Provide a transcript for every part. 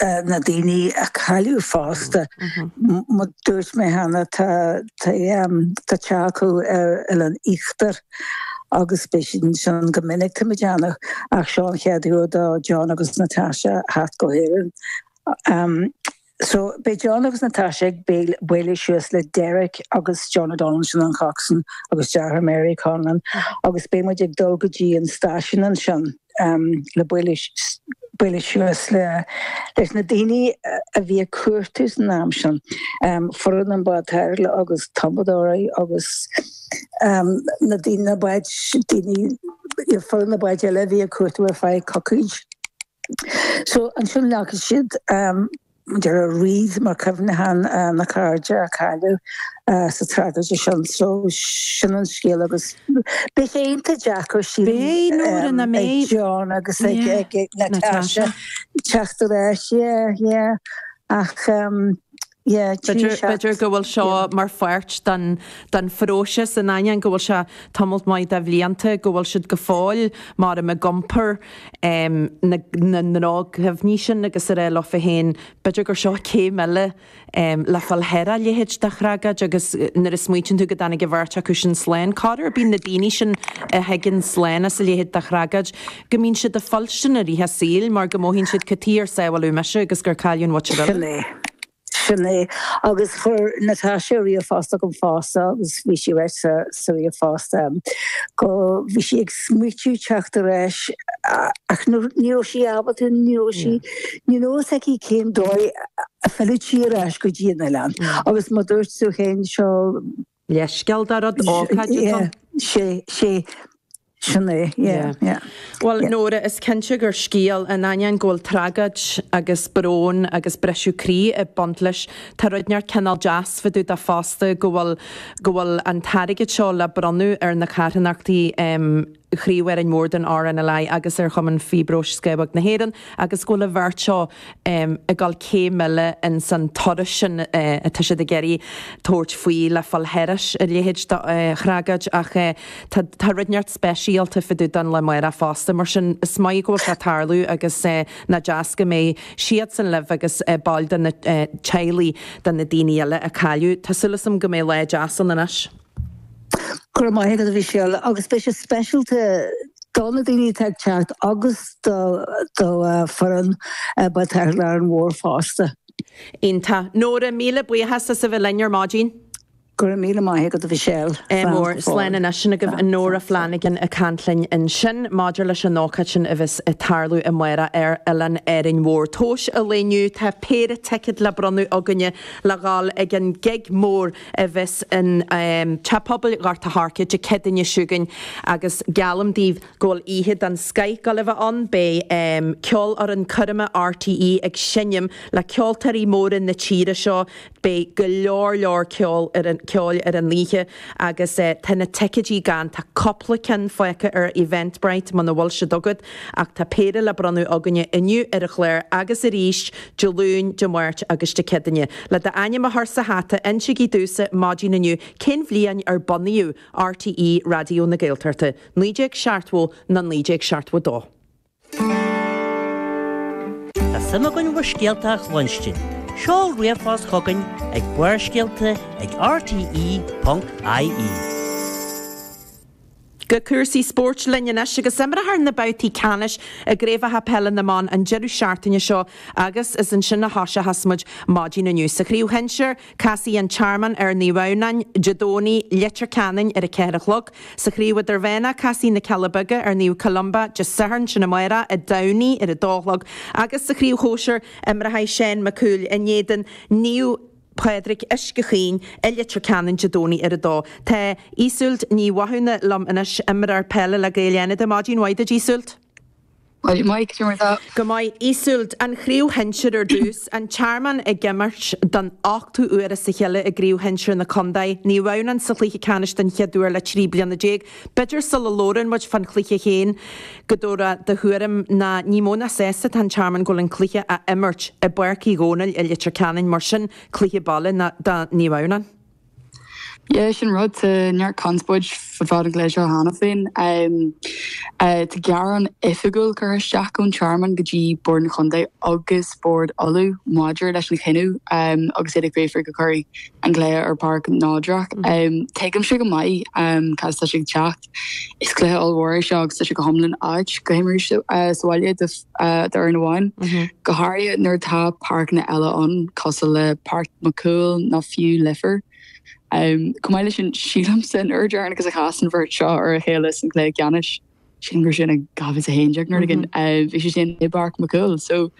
na daoine a cailleadh fosta. Mar a dúirt mé cheana tá teach acu ar Oileán Íochtar agus bíonn sé ansin go minic tá muid ann ach seo an chéad uair do John agus Natasha theacht go hÉirinn. So beidh John agus Natasha ag bualadh suas le Derek agus John O'Donnell, sin an coxswain, agus deartháir Mary, Conlon, agus beidh muid ag dul go dtí an stáisiún ansin. le bualadh suas leis na daoine a bhí ag cuartú san am sin, foireann an Bhád Tarrthála agus tumadóirí agus na daoine, na báid, daoine, foireann na báid eile a bhí ag cuartú ar feadh coicíse. So, ansin leagfaidh siad. Derek wreath mar chuimhneachán ar na cairde a cailleadh sa tragóid sin. So, sin an scéal agus beidh sé iontach deacair sílim ag John agus ag Natasha teacht ar ais yeah yeah ach yeah b'fhéidir go bhfuil seo mar pháirt den den phróiseas in ainneoin go bhfuil sé tamalt maith de bhlianta go bhfuil siad go fóill mar em ag iompar na ndroch-chuimhní sin agus ag rá leofa féin, b'fhéidir gur seo céim eile le fáil thar a leithéid de thragóid agus nuair a smaoitíonn tú go dtáinig an bheirt acu sin slán, corruair bíonn na daoine sin a thigeann slán as a leithéid de thragóid, go mbíonn siad ag fuilstin i rith a saoil mar go mothaíonn siad cad chuige ar sábháladh mise agus gur cailleadh an mhuintir eile. Sin é. Sin é. Agus chuir Natasha ríomhphost chugam fosta agus bhí sí ag ráit sa sa ríomhphost em go bhí sí ag smaoitiú teacht ar ais ach ní ní raibh sí ábalta ní raibh sí ní raibh fhios aici cén dóigh a bhfillfeadh sí ar ais go dtí an oileán. Agus mar dúirt tú féin seo leithscéal dá rud, ócáid atá. Sea, sea. Sin é, yeah, yeah. Bhuel, Nóra, is cinnte gur scéal, in ainneoin go bhfuil tragóid agus brón agus briseadh croí ag baint leis, tá rud inteacht cineál deas fá dtaobh de fosta go bhfuil, go bhfuil an t-airgead seo le bronnadh ar na carthanachtaí, chraobh Árainn Mhór den RNLI agus ar Chumann Fiobróis Scamhóg na hÉireann agus go bhfuil an bheirt seo ag dul céim eile ins an turas sin atá siad ag iarraidh tabhairt faoi le fáil thairis a leithéid de thragóid ach tá rud inteacht speisialta fá dtaobh den lá amárach fosta mar sin is maith go bhfuil sé ag tarlú agus nach deas go mbeidh siadsan libh agus baill de na teaghlaigh de na daoine eile a cailleadh. Tá súil agam go mbeidh lá deas ann anois. Go raibh maith agat, a Mhichelle, agus beidh sé speisialta do na daoine atá ag teacht agus do do foireann Bád Tarrthála Árainn Mhóir fosta. Iontach. Nóra, míle buíochas as a bheith linn ar maidin. Go raibh míle maith agat, a Mhichelle. Slán go fóill. Slán anois. Sin agaibh í Nóra Flanagan ag caint linn ansin maidir leis an ócáid sin a bheas ag tarlú amárach ar Oileán Árainn Mhór. Tomhas an lae inniu, tá péire ticéad le bronnadh againne le dhul ag an gig mór a bheas i dTeach Pobail Ghort an Choirce Dé Céadaoine seo chugainn agus geallaim daoibh go bhfuil oíche den scoith ag gabháil a bheith ann. Beidh Ceolfhoireann Choirme RTÉ ag seinm le ceoltóirí móra na tíre seo. Beidh go leor leor ceoil ar an oíche agus tá na ticéidí gann. Tá cúpla ceann fágtha ar Eventbrite muna bhfuil siad agat. Ach tá péire le bronnadh againne inniu ar an chlár agus arís Dé Luain, Dé Máirt agus Dé Céadaoine. Le d'ainm a chur sa hata, insigí domhsa, maidin inniu, cén bhliain ar bunaíodh RTÉ Raidió na Gaeltachta, naoi déag seachtmhó nó naoi déag seachtmhó dó? Tá suim againn bhur scéalta a chluinstin, seol ríomhphost chugainn ag Barrscéalta ag rte ponc ie. Go cúrsaí spóirt linn anois. Agus imreofar na babhtaí ceannais i gCraobhacha Peile na mBan an deireadh seachtaine seo agus is ansin a thoiseochas muid maidin inniu. Sa Chraobh Shinsir, casfaidh An Tearmann ar Naomh Adhamhnáin, Dé Domhnaigh i Leitir Ceanainn ar a ceathair a chlog. Sa Chraobh Idirmheánach, casfaidh Na Cealla Beaga ar Naomh Columba, Dé Sathairn, sin amárach, i dTamhnaigh ar a dó a chlog agus sa Chraobh Shóisir, imreochaidh Seán Mac Cumhaill in éadan Naomh. Pádraig Uisce Chaoin, i Leitir Ceanainn Dé Domhnaigh ar 2. Tá Iseult Ní Mhathúna liom anois, imreoir peile le Gaeil Fhánada. Maidin mhaith duit, Iseult. Maidin mhaith, cad é mar atá? Go maith, Iseult. An Chraobh Shinsir ar dtús, An Tearmann ag imirt don ochtú uair as a chéile i gCraobh Shinsir na contae. Naomh Adhamhnáin sa chluiche ceannais den chéad uair le 13 bliana. B'fhéidir, sula labhrann muid fán chluiche féin, go dtabharfá do thuairim, ná ní mó ná sásta atá an Tearmann go bhfuil an cluiche á imirt i bPáirc Uí Dhónaill i Leitir Ceanainn, mar sin, cluiche baile do Naomh Adhamhnán. Yeah, sin rud, tá neart conspóid fá dtaobh den chluiche seo cheana féin. Tá gearán oifigiúil curtha isteach ón Tearmann go dtí Bord an Chontae agus Bord Uladh maidir leis an chinneadh agus iad ag fiafraí go gcuirfí an cluiche ar pháirc neodrach. Tuigimse go maith cad as atá sé ag teacht. Is cluiche ollmhór é seo agus tá sé go hiomlán ait go himreoidh sé sa bhaile d'fhoireann amháin, go háirithe nuair atá páirceanna eile ann cosúil le Páirc Mac Cumhaill nó fiú Leifear. Chomh maith leis sin, sílimse an uair dheireanach a chas an bheirt seo ar a chéile san gcluiche ceannais, sílim gur sin i 2011 nuair a bhí sé sin i bPáirc Mac Cumhaill.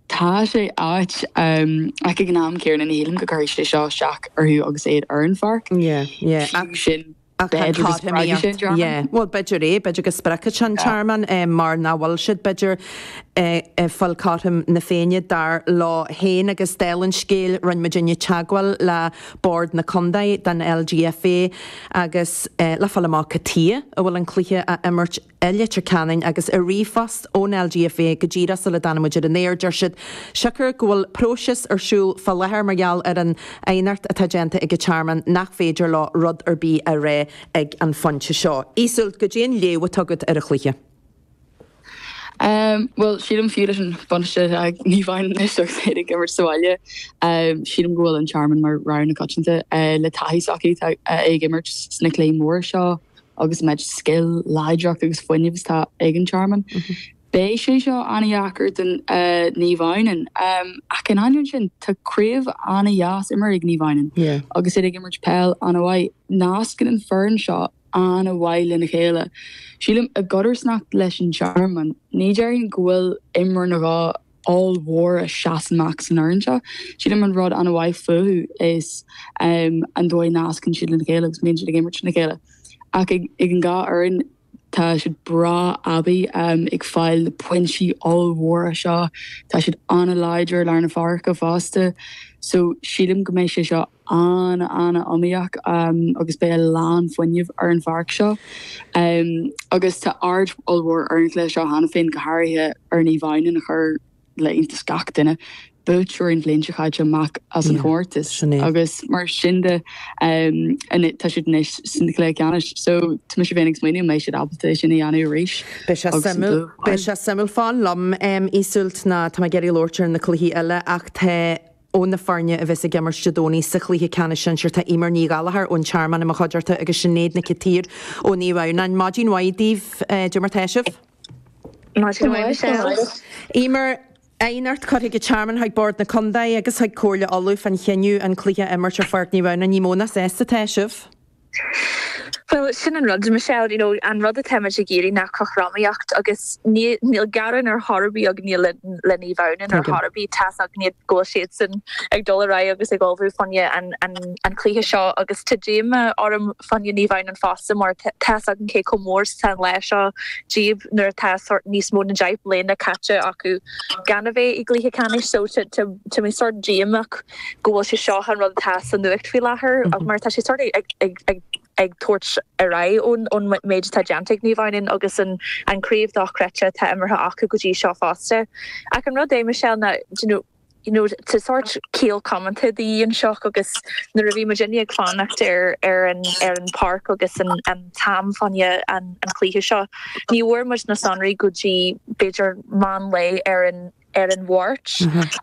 Tá sé ait, ach ag an am céanna ní shílim go gcuirfidh sé seo isteach orthu agus iad ar an pháirc. Fiú sin, b'fhéidir go spreagfaidh sé an Tearmann. Bhuel, b'fhéidir é, b'fhéidir go spreagfaidh sé an Tearmann mar nach bhfuil siad, b'fhéidir, ag fáil cothrom na Féinne, dar leo féin. Agus dála an scéil, rinne muid inniu teagmháil le Bord na Contae den LGFA agus le fáil amach cad chuige a bhfuil an cluiche á imirt I Leitir Ceanainn, agus i ríomhphost ón LGFA go díreach sula dtáinig muid ar an aer, deir siad, siocair go bhfuil próiseas ar siúl fá láthair mar gheall ar an aighneacht atá déanta ag an Tearmann, nach féidir leo rud ar bith a rá ag an phointe seo. Iseult, caidé an léamh atá agat ar an chluiche. Bhuel, sílim, fiú leis an buntáiste atá ag Naomh Adhamhnáin anois agus iad ag imirt sa bhaile, sílim go bhfuil an Tearmann mar rogha na coitianta le taithí s'acu ag imirt sna cluichí móra seo. agus an méid scil, láidreacht agus fuinnimh is atá ag an Tearmann, beidh sé seo an-dheacair do Naomh Adhamhnáin. Ach in ainneoin sin, tá craobh an-dheas imeartha ag Naomh Adhamhnáin agus iad ag imirt peil an-mhaith. Nascann an foireann seo an-mhaith lena chéile, sílim, i gcodarsnacht leis an Tearmann. Ní déarfainn go bhfuil imreoir nó dhó ollmhór a sheas amach san fhoireann seo. Sílim an rud an-mhaith fúthu is an dóigh a nascann siad lena chéile agus a mbíonn siad ag imirt le chéile. Ach ag an dhá fhoireann tá siad breá aibí ag fáil na pointí ollmhóra seo. Tá siad an-láidir i lár na páirce fosta so sílim go mbeidh sé seo an-an-iomaíoch agus beidh a lán fuinnimh ar an pháirc seo agus tá aird ollmhór ar an gcluiche seo cheana féin, go háirithe ar Naomh Adhamhnáin a chuir le hiontas gach duine, buaiteoirí an bhliain seo caite amach as an chomórtas agus mar sin de tá siad anois sa chluiche ceannais so tá mise féin ag smaoineamh an mbeidh siad ábalta é sin a dhéanamh arís. Beidh sé suimiúil. Beidh sé suimiúil fan liom Iseult nó tá mé ag iarraidh labhairt ar na cluichí eile ach tá Ó na foirne a bheas ag imirt Dé Domhnaigh sa chluiche ceannais sinsir, tá Emer Ní Ghallchóir ón Tearmann i mo chuideachta agus Sinéad Nic an tSaoir ó Naomh Adhamhnáin. Maidin mhaith daoibh, caidé mar tá sibh? Maidin mhaith Michelle. Emer, aighneacht curtha ag an Tearmann chuig Bord na Contae agus chuig Comhairle Uladh fán chinneadh an cluiche a imirt ar Pháirc Naomh Adhamhnáin. Ní mó ná sásta atá sibh? Bhuel, sin an rud, Michelle, you know, an rud atá muid ag iarraidh ná cothromaíocht agus níl gearán ar chor ar bith againne le Naomh Adhamhnáin ar chor ar bith, tá's againne go bhfuil siadsan ag dul ar aghaidh agus ag ullmhú fá choinne an chluiche seo agus tá díoma orm fá choinne Naomh Adhamhnáin fosta mar tá's againn cé chomh mór is atá an lá seo díobh nuair atá sórt níos mó na deich mbliana caite acu. Gan a bheith i gcluiche ceannais, so tá mé sort díomach go bhfuil sé seo an rud atá sa nuacht faoi láthair, mar tá sé sort ag tabhairt ar aghaidh ón méid atá déanta ag Naomh Áine agus an craobh dochreidte atá imirtha acu go dtí seo fosta. Ach an rud é, Michelle, ná, do you know, tá sort ciall comónta de dhíth anseo agus nuair a bhí muid inné ag fanacht ar an bpáirc agus an, Tá muid fá choinne an chluiche seo. Ní bhfuair muid na sonraí go dtí b'fhéidir meán lae ar an ar an Mháirt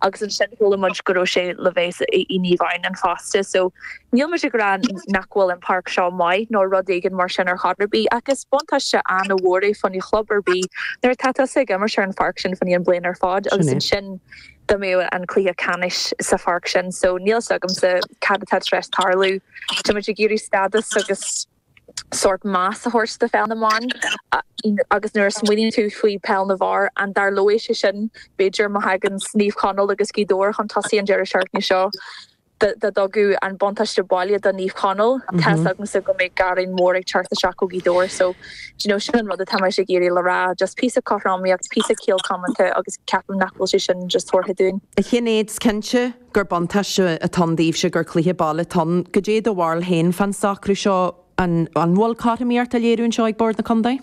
agus ansin chuala muid go raibh sé le bheith i Naomh Eoin fosta. So níl muid ag rá nach bhfuil an páirc seo maith nó rud éigin mar sin ar chor ar bith ach is buntáiste an-mhór é fá choinne club ar bith nuair atá tusa ag imirt ar an pháirc sin fá choinne an bhliain ar fad agus ansin dá mbeadh an cluiche ceannais sa pháirc sin so níl 's agamsa cad atá tar éis tarlú. Táimid ag iarraidh stádas agus sórt meas a thabhairt do pheil na mban agus nuair a smaoiníonn tú faoi peil na bhfear, an dtarlódh sé sin b'fhéidir má thaganns Naomh Conaill agus Gaoth Dobhair chun tosaigh an deireadh seachtaine seo? dá dtugadh an buntáiste baile do Naomh Conaill, tá's agamsa go mbeadh gearán mór ag teacht isteach ó Ghaoth Dobhair so do you know sin an rud atá mise ag iarraidh le rá, just píosa cothromaíocht, píosa ciall comónta agus ceapaim nach bhfuil sé sin just tabharfaí dúinn. A Shinéad, 's cinnte gur buntáiste atá ann daoibhse gur cluiche baile atá ann. Goidé do bharúil féin fán socrú seo, an bhfuil cothromaíocht á léiriú anseo ag Bord na Contae?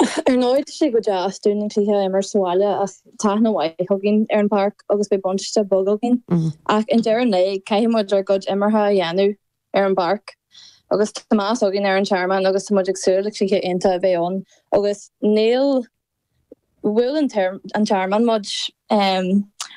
Ar ndóigh, tá sé go deas dúinn an cluiche a imirt sa bhaile ach tá aithne mhaith againn ar an bpáirc agus beidh buntáiste beag againn. Ach i ndeireadh an lae, caithfidh muid ár gcuid imeartha a dhéanamh ar an bpáirc agus tá meas againn ar an Tearmann agus tá muid ag súil le cluiche iontach a bheith ann agus níl, bhuail an Tearmann muid.